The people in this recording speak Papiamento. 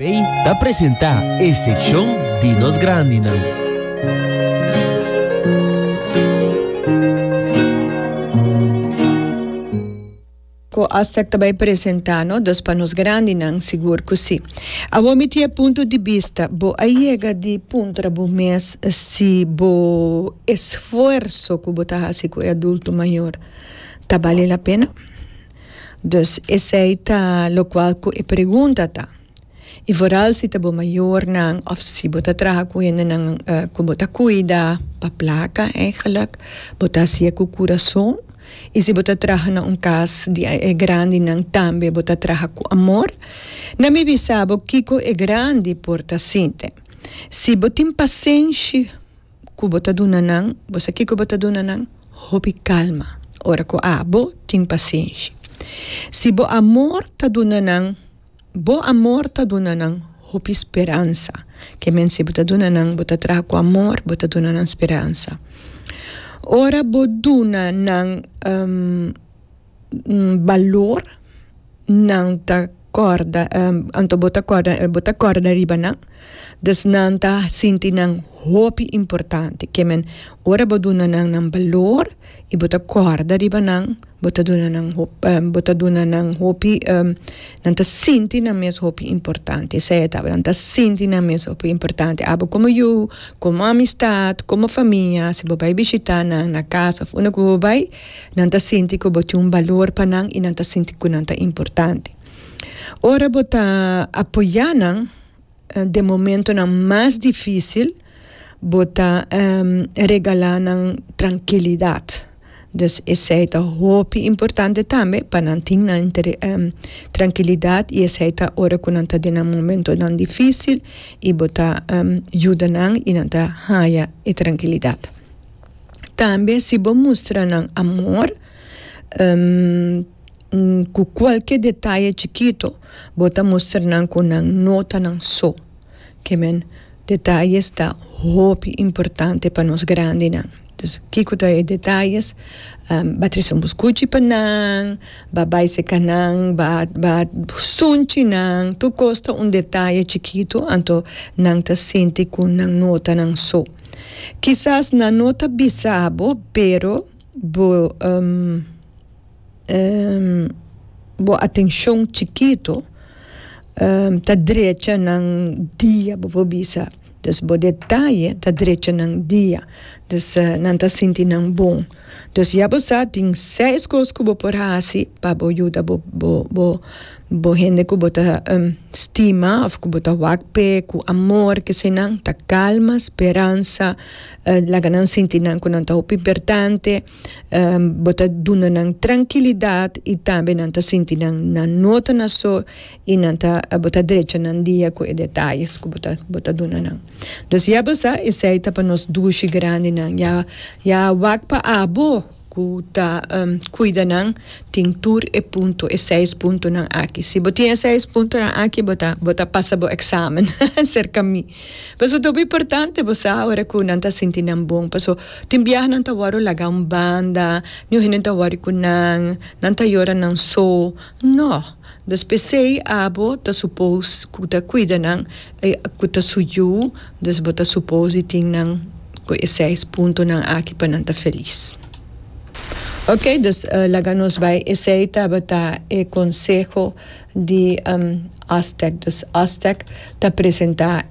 Bay ta presenta e seccion di nos grandinan. Cu Aztec ta bay presenta no dos pa nos grandinan? Sigur cu si. Awor mi tin e punto di bista. Bo a yega di puntra bo mes si bo esfuerso cu bo ta haci cu e adulto mayor ta bali la pena? Dus esei ta lokual ku e pregunta ta. I vooral si ta bo mayornan òf si bo ta traha ku hendenan ku bo ta kuida pa plaka, èigelik bo ta hasié ku kurason. I si bo ta traha na un kas di e grandinan tambe bo ta traha ku amor. Na mi bisa bo kiko e grandi por ta sinti. Si bo tin pasenshi. ku bo ta duna nan, bo sa kiko bo ta duna nan? Hopi kalma ora ku abo tin pasenshi. Si bo amor ta duna nan, bo amor ta duna nan hopi speransa. Ke men si bo ta duna nan, bo ta traha ku amor, bo ta duna nan speransa. Ora bo duna nan. balor nan ta kòrda anto bo ta kòrda bo ta kòrda riba nan dus nan ta sinti nan hopi importante ke men ora bo duna nan nan balor y bo ta kòrda riba nan bo ta duna nan hopi bo ta duna nan hopi nan ta sinti nan mes hopi importante esei e tabata nan ta sinti nan mes hopi importante abo komo yu komo amistad komo famia si bo bai bishita nan na casa unda ku bo bai Nan ta sinti ku bo tin un balor pa nan i nan ta sinti ku nan ta importante. Ora bo ta apoyá nan den momentonan mas difísil, bo ta regalá nan trankilidat. Dus esei ta hopi importante tambe pa nan tin nan trankilidat i esei ta ora ku nan ta den nan momentonan difísil i bo ta yuda nan i nan ta haña e trankilidat. Tambe si bo mustra nan amor ku kualke detaye chikito bo ta mustra nan ku nan no ta nan so kimen detayes ta hopi importante pa nos grandinan dus kiko ta e detayes ba trese un buskuchi pa nan ba bai seka nan ba ba sunchi nan tur kos ta un detaye chikito anto nan ta sinti ku nan no ta nan so. Kisas nan no ta bisa bo, pero bo bo atenshon chikito ta drecha nan dia bo por bisa. Dus bo detaye ta drecha nan dia. Dus nan ta sinti nan bon. Dus ya bo sa tin seis kos ku bo por hasi pa bo yuda bo bo Bo hende ku bo ta stima òf ku bo ta wak p'e ku amor, kese nan ta kalma, speransa, laga nan sinti nan ku nan ta hopi importante, bo ta duna nan trankilidat i tambe nan ta sinti nan nan no ta na so i nan ta bo ta drecha nan dia ku e detayes ku bo ta bo ta duna nan. Entonces ya bo sa esei ta pa nos dushi grandinan ya ya wak pa abo. ku ta kuida nan tin tur e punto e seis puntonan aki si bo tin e seis puntonan aki bo ta bo ta pasa bo examen serka mi por eso ta hopi importante bo sa ora ku nan ta sinti nan bon por eso tin biaha nan ta wòrdu laga un banda niun hende ta wòri ku nan nan ta yora nan so no. Nos p'esei abo ta supos ku ta kuida nan e ku ta su yu, dus bo ta supos di tin nan ku e seis puntonan aki pa nan ta felis. Ok, dus laga nos bai. Esei tabata e konseho di Aztec. Dus Aztec ta presentá.